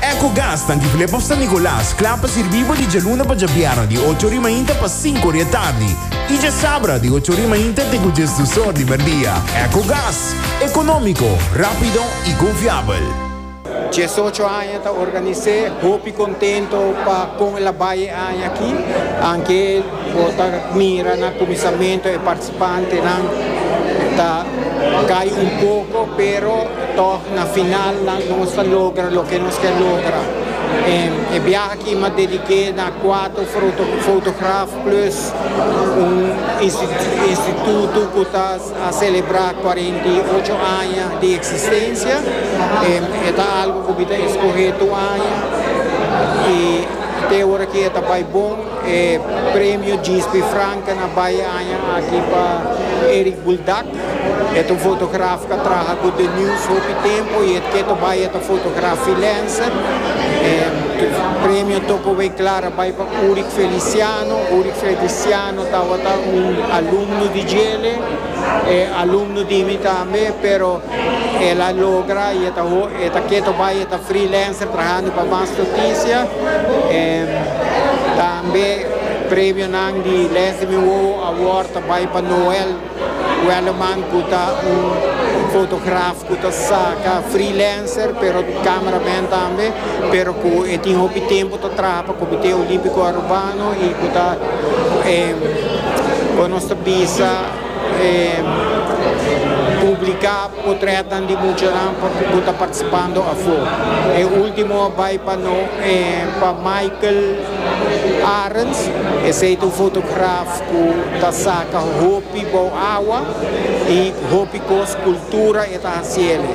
Ecogas ta Antigulé pa San Nicolas, kla pa sirbí bo di djaluna pa djabièrnè di ocho ori mainta pa sinku ori e tardi i djasabra di ocho ori mainta te ku djes dus or di merdia. Ecogas, ekonómiko, rápido i konfiabel. Diesocho aña ta organisé, hopi kontento pa kon el a bai e aña aki, anke bo ta mira na kuminsamentu e. Pantenan ta cay un poco pero toch na final nan nos ta logra loke nos kier logra. E biaha aki m'a dedique na cuatro fotograf plus un instituto cu ta a celebra cuarenta y ocho aña di existencia. E ta algo cu mi ta escoge tur aña y te ora aki e ta bay bon. E Premio Gisby Franke na bai e aña aki pa Eric Buldak. E ta un fotograf cu a traha cu The News hopi tempo y e keto bai e ta fotogra freelancer. E premio Toco Wei Clara a bai pa Uric Feliciano. Uric Feliciano tawata un alumno di djele. E alumno di mi tambe pero el a logra y e ta e ta keto bay e ta freelancer trahando pa mas noticia tambe premionan di les di mi wowo award ta bay pa Noel Wellerman cu ta un fotografo. cu ta saca freelancer pero camera man tambe pero cu e tin hopi tempo ta traha pa comite olimpico Arubano y cu ta con nos ta bisa publica potretnan di muchanan cu ta participando afo e ultimo a bay pa no pa Michael Arens esey ta un fotograf cu ta saca hopi bao awa y hopi cos. Cultura e ta haciele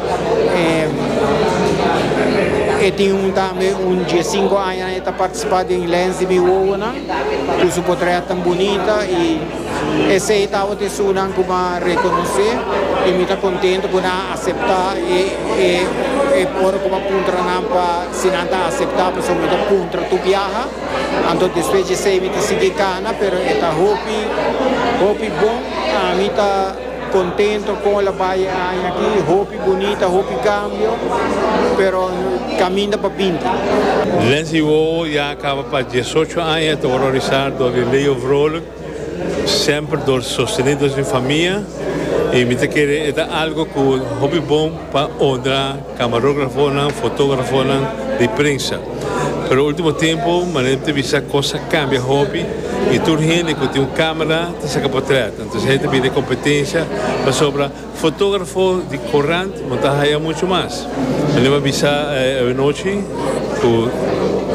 e tin un tambe un die cinco aña nan e ta participa den lens di mi wowonan cu su potrea tan bunita y esey tabata esunan cu mi a reconoce y mi ta contento cu nan a acepta e ora cu mi a puntra nan pa si nan ta acepta pasobra mi ta puntra tur biaha anto despues di esey mi ta sigui cana pero e ta hopi hopi bon a mi ta Contento con el a bay e aña aki, hopi bunita, hopi cambio, pero caminda pa binti. Lindsay Wowo ya a caba pa diesocho aña ta horrorisá dor di Leo Vrolijk, semper dor sostené dor sin famia, i mi ta kere e ta algo cu hopi bon pa honra. Camarografonan, fotografonan, di prensa. Pero ultimo tiempo manera mi ta bisa cos a cambia hopi y tur hende cu tin un camera ta saca potret. Antes hende ta bira competencia pasobra fotografo di corant no ta haya mucho mas. Manera mi a bisa awanochi cu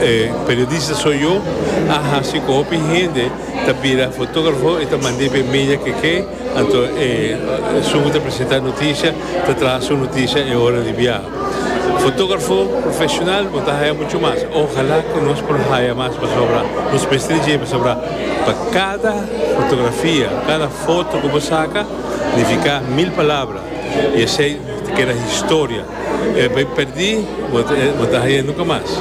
e periodista soy yo a haci cu hopi hende ta bira fotografo y ta mand'e pa e media keke. Anto e esun ku ta presentá noticia ta traha su noticia e ora di biaha. Fotógrafo profesional bo ta haya mucho mas. Ojalá ku nos por haya mas pasobra nos mester di dje pasobra pa kada fotografia, kada foto ku bo saka nifiká mil palabra i esei ta keda historia. E bai perdí bo ta haya nunka mas.